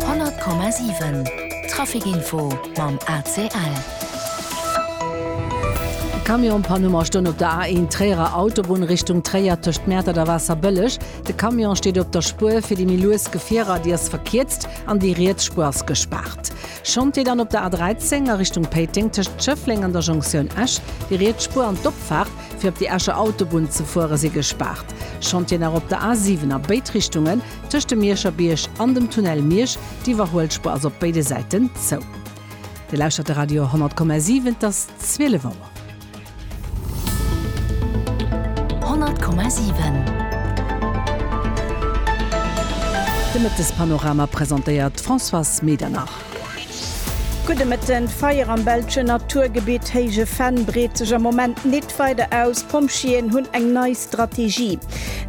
100,7 Trafic Info mam ACL. Camion Panuma stoung op der A1 Tréierer Autobunn Richtung Tréier tëscht Mäertert a Waasserbëlleg. De Camion steet op der Spuer fir déi méi lues Gefierer, déi ass verkierzt an déi riets Spuer ass gespaart. Chantier dann op der A13 a Richtung Péiteng tëscht Schëffleng an der Jonktioun Esch. Déi riets Spuer an d'Opfaart fir op déi Escher Autobunn ze fuere si gespaart. Chantier nach op der A7 a béid Richtungen. Tëscht dem Mierscher Bierg an dem Tunnel Miersch, d'Iwwerhuelspur ass op béide Säiten zou. Dir lauschtert de Radio 10,7, et ass 12 Auer. 10,7 De Mëttespanorama presentéiert d'Françoise Medernach. Gudde Mëtten, D'Feier am belschen Naturgebitt Héije Venn breet sech am Moment nit weider aus. D'Pompjeeën hunn eng nei Strategie.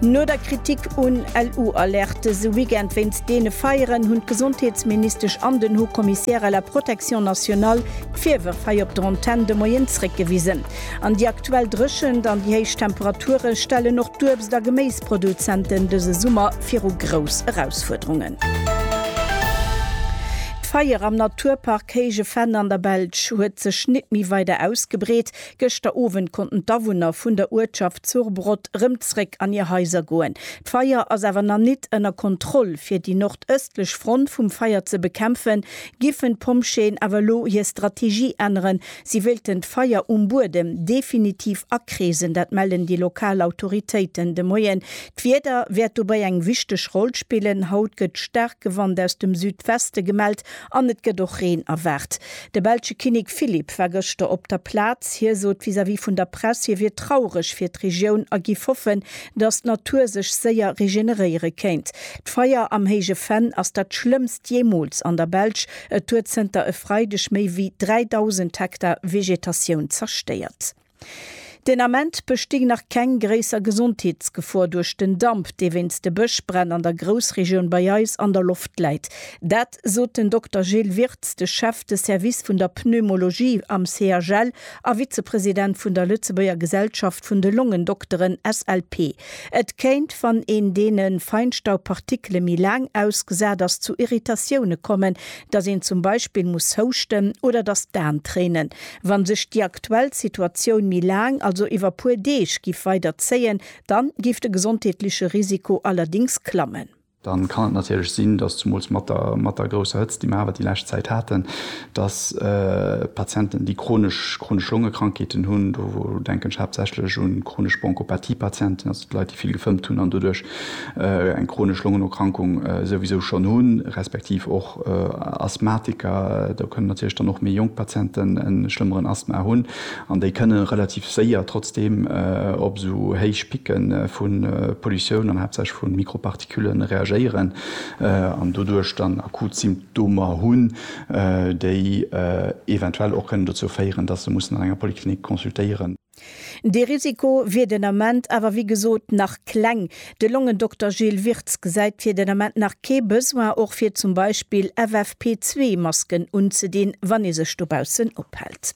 No der Kritik un LU-Alertes e Weekend wéinst deene Feieren, hunn d'Gesondheetsministesch an den Haut Commissaire à la protection nationale d'Virwërf hei op der Antenn de Moien zréckgewisen. An déi aktuell Dréchent an déi héich Temperature stellen och d'Uebst a Geméisproduzenten dëse Summer viru grouss Erausfuerderungen. D'Feier am Naturpark Héije Venn an der Belsch huet sech nit méi weider ausgebreet. Gëschter Owend konnten d'Awunner vun der Uertschaft Surbrod rëm zréck an hir Haiser goen. D'Feier ass awer nach nit ënner Kontroll. Fir déi nordëstlech Front vum Feier ze bekämpfen, giffen d'Pompjeeën awer elo hir Strategie änneren, Si wéilten d'Feier um Buedem definitiv akreesen, dat mellen déi lokal Autoritéiten de Moien. D'Wieder wäert dobäi eng wichteg Roll spillen. Haut gëtt staarke Wand aus dem Südweste gemellt an et gëtt och Reen erwaart. De belsche Kinnek Philippe war gëschter op der Plaz. Hie sot vis-à-vis vun der Press, hie wier traureg fir d'Regioun a giff hoffen, datt d'Natur sech séier regeneréiere kéint. D'Feier am Héije Venn ass dat schlëmmst jeemools an der Belsch. Et huet zënter e Freideg méi wéi 3.000 Hektar Vegetatioun zerstéiert. Den Ament besting nach keng gréisser Gesondheetsgefor duerch den Damp, dee wéinst de Bëschbränn an der Groussregioun bei eis an der Loft läit. Dat sot den Dokter Gilles Wirtz, de Chef de Service vun der Pneumologie am CHL a Vizepresident vun der Lëtzebuerger Gesellschaft vun de Longendokteren, SLP. Et kéint, wann een deene Feinstaubpartikele méi laang ausgesat ass, zu Irritatioune kommen, datt een zum Beispill muss houschten oder datt d'Aen tréinen. Wa sech déi aktuell Situatioun méi laang, also iwwer puer Deeg, giff weider zéien, dann giff de gesondheetleche Risiko allerdéngs klammen. dann kann et natierlech sinn, dass zumools mat der mat der grousser Hëtzt, déi mer awer déi lescht Zäit haten, dass Patienten, déi chronesch chronesch Longekrankheeten hunn, do denken ech haaptsächlech un chronesch Bronchopathie-Patienten, also d'Leit, déi vill gefëmmt hunn an doduerch eng chronesch Longenerkrankung souwisou schonn hunn, respektiv och Asthmatiker, do kënnen natierlech dann och méi jonk Patienten e schlëmmeren Asthma hunn. An déi kënne relativ séier trotzdeem op esou héich Picke vu Pollutioun an haaptsächlech vu Mikropartikule reagéieren an doduerch dann akut Symptomer hunn, déi eventuell och kënnen dozou féieren, dass se mussen an enger Poliklinik consultéieren. Dee Risiko wier den Ament awer wéi gesot nach kleng. De Longendokter Gilles Wirtz gesäit fir den Ament nach kee Besoin och fir zum Beispill FFP2 Masken unzedinn, wann ee sech dobaussen ophält.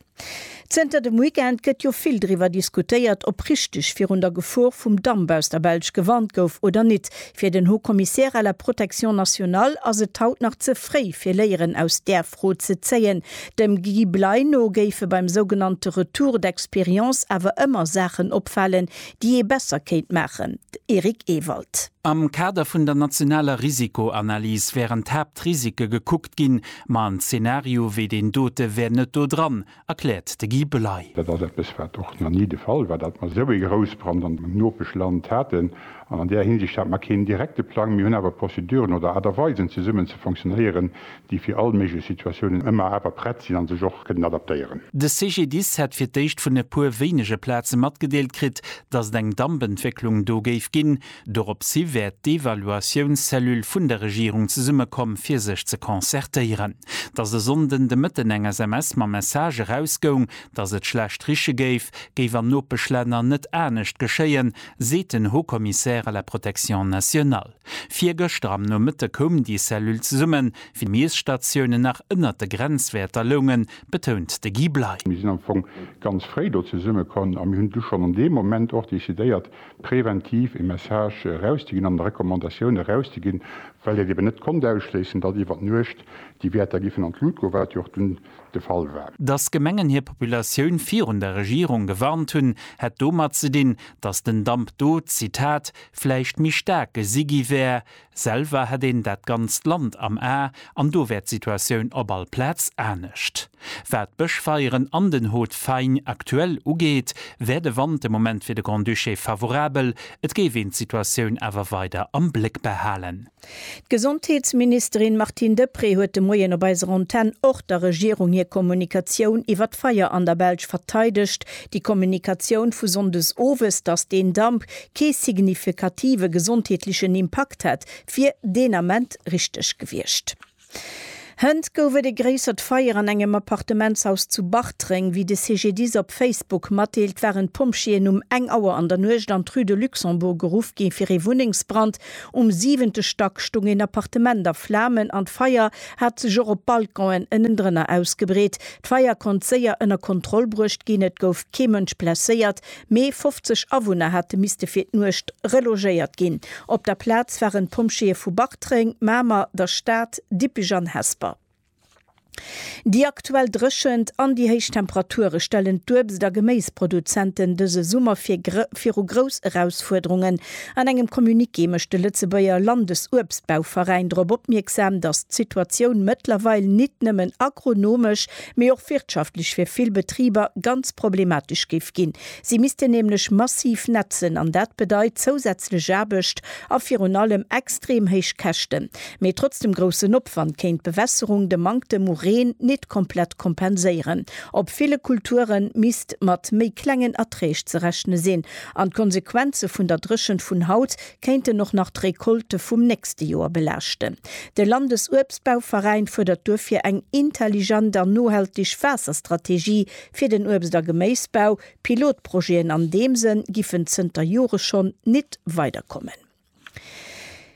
Zënter dem Weekend gëtt jo vill driwwer diskutéiert, ob richteg virun der Gefor vum Damp aus der Belsch gewarnt gouf oder nit. Fir den Haut Commissaire à la protection nationale ass et haut nach ze fréi fir Léieren aus där Fro ze zéien. Dem Guy Bley no géife beim sougenannte Retour d'expérience awer ëmmer Saachen opfalen, déi ee besser kéint maachen. Eric Ewald. Am Kader vun der nationaler Risikoanalys wären d'Haaptrisike gekuckt ginn, Ma en Zeenario wéi deen dote wär net do dran, erkläert de Guy Bley. Dat ass eppes, wat och nach ni de Fall war, datt mer esou ee Groussbrand am Nopeschland haten. An an där Hinsicht hate mer keen direkte Plang. Mir hunn awer Prozeduren oder Aart a Weisen, zesummen ze fonctionnéieren, déi fir all méiglech Situatiounen ëmmer awer prett sinn a sech och kënnen adaptéieren. De CGDIS hätt fir d'éischt vun e puer wéinege Plaze matgedeelt kritt, datt et eng Dampentwécklung do géif ginn. Doropshi wäert d'Evaluatiounscellule vun der Regierung zesummekomm fir sech ze concertéieren. Datt e Sonnden de Mëtten eng SMS mam Message erausgoung, datt et schlecht riche géif, géif an Nopeschlänner net anescht geschéien, seet den Haut Commissaire à la Protection nationale. Virgëschter am Nomëtte koum déi Cellule zesummen, wéi d'Miesstatiounen nach ënnert de Grenzwäerter loungen, betount de Guy Bley. Mir sinn am Fong ganz fréi do zesummekomm a mir hunn du schonn an deem Moment och decidéiert, preventiv e Message erauszeginn an Recommandatioun erauszeginn, well et eben net konnt ausschléissen, datt iwwer d'Nuecht déi Wäerter géifen an d'Lut goen, wat jo och dunn de Fall war. Datt d'Gemengen hir Populatioun virun der Regierung gewarnt hunn, hätt domat ze dinn, datt den Damp do, Zitat, vläicht méi staark gesi gi wär, Selwer hätt een dat ganzt Land am A an do wär d'Situatioun op all Plaz anescht. Wat d'Bëschfeieren an den Haut Faing aktuell ugeet, wär de Wand de Moment fir de Grand-Duché favorabel, et géif een d'Situatioun awer weider am Bléck behalen. D'Gesondheetsministerin Martine Deprez huet de Moien op eiser Antenn och der Regierung hir Kommunikatioun iwwer d'Feier an der Belsch verteidegt. Déi Kommunikatioun vu Sonndes owes, datt deen Damp kee signifikative gesondheetlechen Impakt hätt, wier deen Ament richteg gewiescht. Hënt gouf et e gréissert Feier an engem Appartementshaus zu Bartreng. Wéi de CGDIS op Facebook matdeelt, waren d'Pompjeeën um eng Auer an der Nuecht an d'Rue de Luxembourg geruff gi fir ee Wunnengsbrand. Um siwente Stack stoung een Appartement a Flamen an d'Feier hat sech och op Balconen ënnendrënner ausgebreet. D'Feier konnt séier ënner Kontroll bruecht ginn, et gouf kee Mënsch blesséiert. Mee 50 Awunner hate misste fir d'Nuecht relogéiert ginn. Op der Plaz waren d'Pompjeeë vu Bartreng, Mamer, der Stad, Dippech an Hesper. Déi aktuell Dréchent an déi héich Temperature stellen d'Uebst a Geméisproduzenten dëse Summer fir viru grouss Erausfuerderungen. An engem Communiqué mécht de Lëtzebuerger Landesuebstbauveräin drop opmierksam, datt d'Situatioun mëttlerweil nit nëmmen agronomesch, mee och wirtschaftlech fir vill Betriber ganz problematesch géif ginn. Si missten nämlech massiv netzen an dat bedeit zousätzlech Aarbecht a virun allem extrem héich Käschten. Mee trotz dem groussen Opwand kéint d'Bewässerung de Manktem u Reen nit komplett kompenséieren. Op ville Kulture misst mat méi klengen Erträg ze rechne sinn an d'Konsequenze vun der Dréchent vun haut kéinten och nach d'Recolte vum nächste Joer belaaschten. De Landesuebstbauveräin fuerdert duerfir eng intelligent an nohaltig Waasserstrategie fir den Uebst a Geméisbau. Pilotprojeten an deem Sënn giffen zënter Jore schonn nit weiderkommen.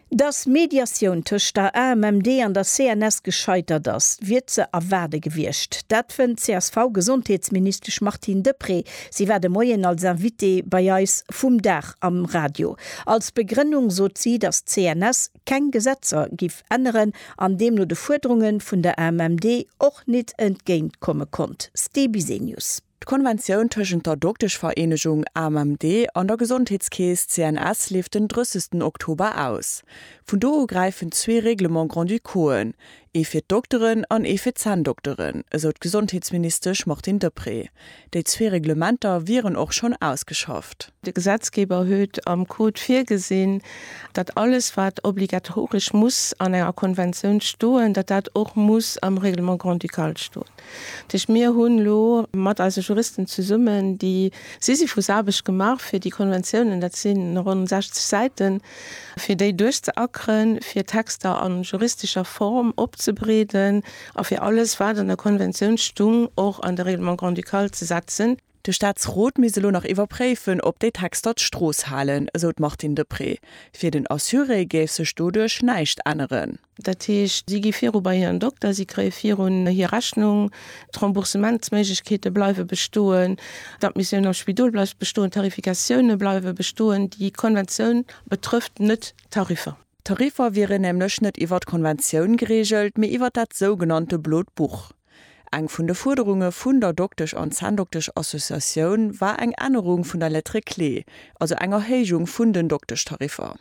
Datt Mediatioun tëscht der AMMD an der CNS gescheitert ass, wier ze erwaarde gewiescht. Dat fënnt d'CSV-Gesondheetsministesch Martine Deprez. Si war de Moien als Invitée bei eis vum Dag am Radio. Als Begrënnung sot si, datt d'CNS keng Gesetzer giff änneren an deemno de Fuerderunge vun der AMMD och nit entgéint komme konnt. Ste Bisenius. D'Konventioun tëschent der Dokteschvereenegung AMMD an der Gesondheetskeess CNS leeft den 30 Oktober aus. Vun do u gräifen zwee Règlement grand-ducauxen, Ee fir d'Dokteren an ee fir d'Zänndokteren, esou d'Gesondheetsministesch Martine Deprez. Déi zwee Reglementer wieren och schonn ausgeschafft. De Gesetzgeber huet am Code virgesinn, datt alles wat obligatoresch muss an enger Konventioun stoen, datt dat och muss am Règlement grand-ducal stoen. Tëscht mir hunn elo mat eise Juristen zesummen déi Sisyphusaarbecht gemaach, fir déi Konventiounen, dat si ronn 60 Säiten, fir déi duerchzeackeren, fir d'Texter a juristescher Form opzebreeden a fir alles, wat an der Konventioun stung, och an de Règlement grand-ducal ze setzen. De Staatsrot misst elo nach iwwerpréifen, ob déi Texter d'Strooss halen, esou d'Martine Deprez. Fir den Assuré géif sech doduerch näischt änneren. Dat heescht, si gi viru bei hiren Dokter, si kréie virun hir Rechnung, d'Remboursementsméiglechkeete bleiwe bestoen, d'Admissioun am Spidol bleift bestoen, d'Tarifikatioune bleiwe bestoen. Déi Konventioun betrëfft net d'Tariffer. D'Tariffer wieren nämlech net iwwer d'Konventioun gereegelt, mee iwwer dat sougenannte Blot Buch. Eng vun de Fuerderunge vun der Doktesch an Zänndokteschassociatioun war eng Ännerung vun der Lettre clé, also eng Erhéijung vun den Dokteschtariffer.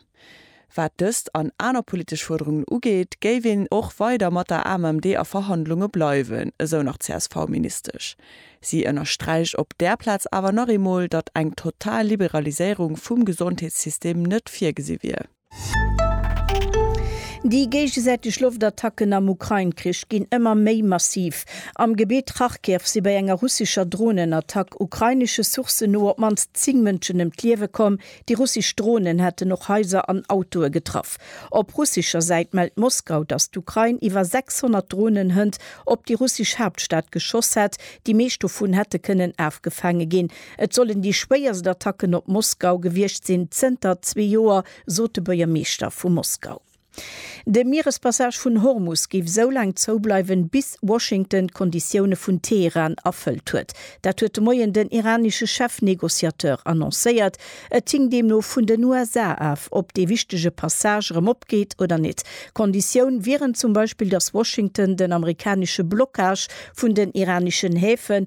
Wat dëst an aner politesch Fuerderungen ugeet, géif een och weider mat der AMMD a Verhandlunge bleiwen, esou nach d'CSV-Ministesch. Si ënnersträicht op där Plaz awer nach eemol, datt eng total Liberaliséierung vum Gesondheetssystem net virgesi wier. Déi géigesäiteg Loftattacken am Ukrain-Krich ginn ëmmer méi massiv. Am Gebitt Charkiw si bei enger russescher Dronenattack ukrainesche Sourcen no op d'mannst 10 Mënschen ëm d'Liewe komm. Déi russesch Dronen hätten och Haiser an Autoe getraff. Op russescher Säit mellt Moskau, datt d'Ukrain iwwer 600 Dronen-Hënt op déi russesch Haaptstad geschoss hätt. Déi meescht dovun hätte kënnen afgefaange ginn. Et sollen déi schwéierst Attacken op Moskau gewiescht sinn zënter zwee Joer, sot de Buergermeeschter vu Moskau. De Mierespassage vun Hormus géif esou laang zoubleiwen, bis Washington d'Konditioune vun Teheran erfëllt huet. Dat huet de Moien den iranesche Chef-Negociateur annoncéiert. Et hing deemno vun den USA af, ob dee wichtege Passage erëm opgeet oder net. Konditioun wieren zum Beispill, datt Washington den amerikanesche Blockage vun den iraneschen Häfen,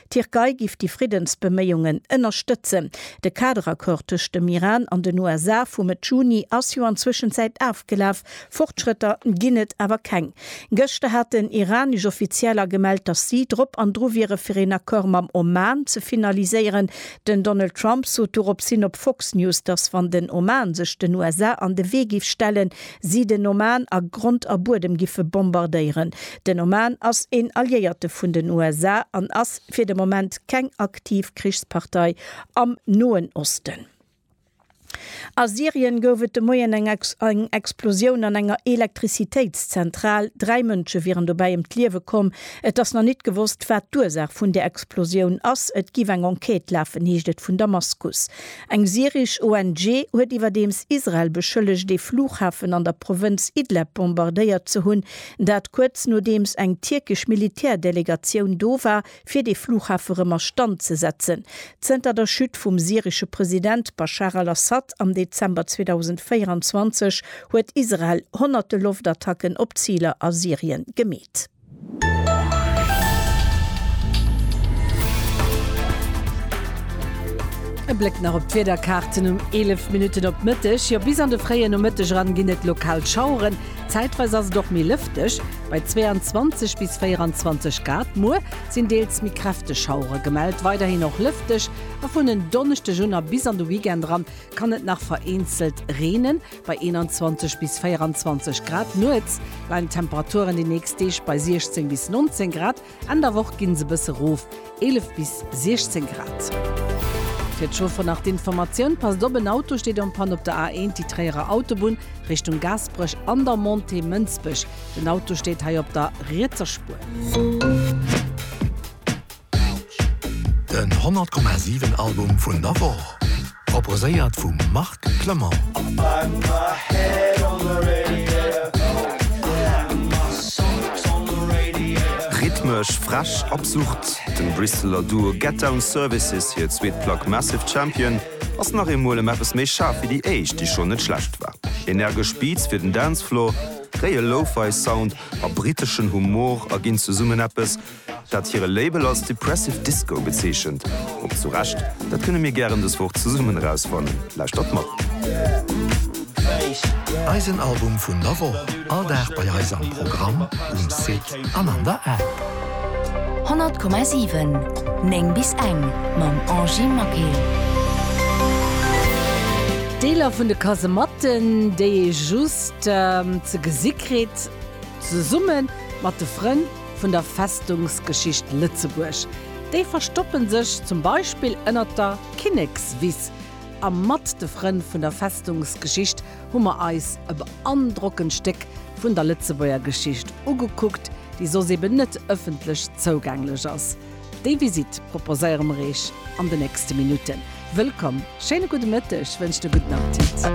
D'Tierkei giff déi Friddensbeméiungen ënnerstëtzen. De Kaderaccord tëscht dem Iran an den USA vu Mëtt Juni ass jo an Zwëschenzäit afgelaf, Fortschrëtter ginn et awer keng. Gëschter haten iranesch Offizieller gemellt, datt si drop an dru wiere fir een Accord mam Oman ze finaliséieren. Den Donald Trump sot doropshin op Fox News, datt wann den Oman sech den USA an de Wee giff stellen, si den Oman a Grond a Buedem giffe bombardéieren. Den Oman ass een Alliéierte vun den USA an ass fir de Moment keng aktiv Krichspartei am Noen Osten. A Syrien gouf et de Moien eng Explosioun an enger Elektrizitéitszentral. Dräi Mënsche wieren dobäi ëm d'Liewe komm. Et ass nach nit gewosst, wat d'Ursaach vun der Explosioun ass. Et géif eng Enquête lafen, heescht et vun Damaskus. Eng syresch ONG huet iwwerdeems Israel beschëllegt, ee Flughafen an der Provënz Idleb bombardéiert ze hunn, dat kuerz nodeems eng tierkesch Militärdelegatioun do war, fir dee Flughafe rëm a Stand ze setzen. Zënter der Chute vum syresche President Baschar al-Assad am Dezember 2024 huet Israel honnerte Loftattacken op Ziler a Syrien gemeet. E Bléck nach op d'Wiederkaarten um 11 Minutten op d'Mëtteg. Jo, bis an de fréie Nomëtteg eran ginn et lokal Schaueren. Zäitweis ass et och méi lëfteg, bei 22 bis 24 Grad. Muer sinn deels méi kräfteg Schauere gemellt. Weiderhin och lëfteg a vun en Donneschdeg un a bis an de Weekend eran kann et nach vereenzelt reenen. Bei 21 bis 24 Grad nuets leien d'Temperaturen déi nächst Deeg bei 16 bis 19 Grad, Enn der Woch ginn se e bësse rof, 11 bis 16 Grad. Fir d'Chauffer nach d'Informatioun, Passt op, en Auto steet en Panne op der A1, déi Tréierer Autobunn, Richtung Gaasperech, an der Montée Mënsbech. Den Auto steet hei op der rietser Spuer. Den 100,7 Album vun der Woch, proposéiert vum Marc Clement. Rhythmesch, frech, absurd, dem Brisseler Duo Get Down Services hir zweet Plack Massive Champion ass nach eemol ëm eppes méi schaarf wéi déi éischt, déi schonn net schlecht war. Energesch Beats fir den Dancefloor, réie Lo-Fi Sound a briteschen Humor erginn zesummen eppes, dat hire Label als Depressive Disco bezeechent, och zu Recht, dat kënne mir gären dës Woch zesummen erausfannen. Lauschtert mat. Eisen Album vun der Woch, all Dag bei eis am Programm, um Site an an der App. 100,7 9 bis eng mam Angy Maquet. Deeler vun de Kasematten, déi ee just ze gesi kritt, zesumme mat de Frënn. vun der Festungsgeschicht Lëtzebuerg. Déi verstoppen sech zum Beispill ënnert der Kinnekswiss. A mat de Frënn vun der Festungsgeschicht hu mer eis e beandrockend Stéck vun der Lëtzebuerger Geschicht ugekuckt, déi soss eben net ëffentlech zougänglech ass. Déi Visitt proposéiere mer Eech an de nächste Minutten. Wëllkomm, schéine gudde Mëtteg, wënscht e gudden Appetit.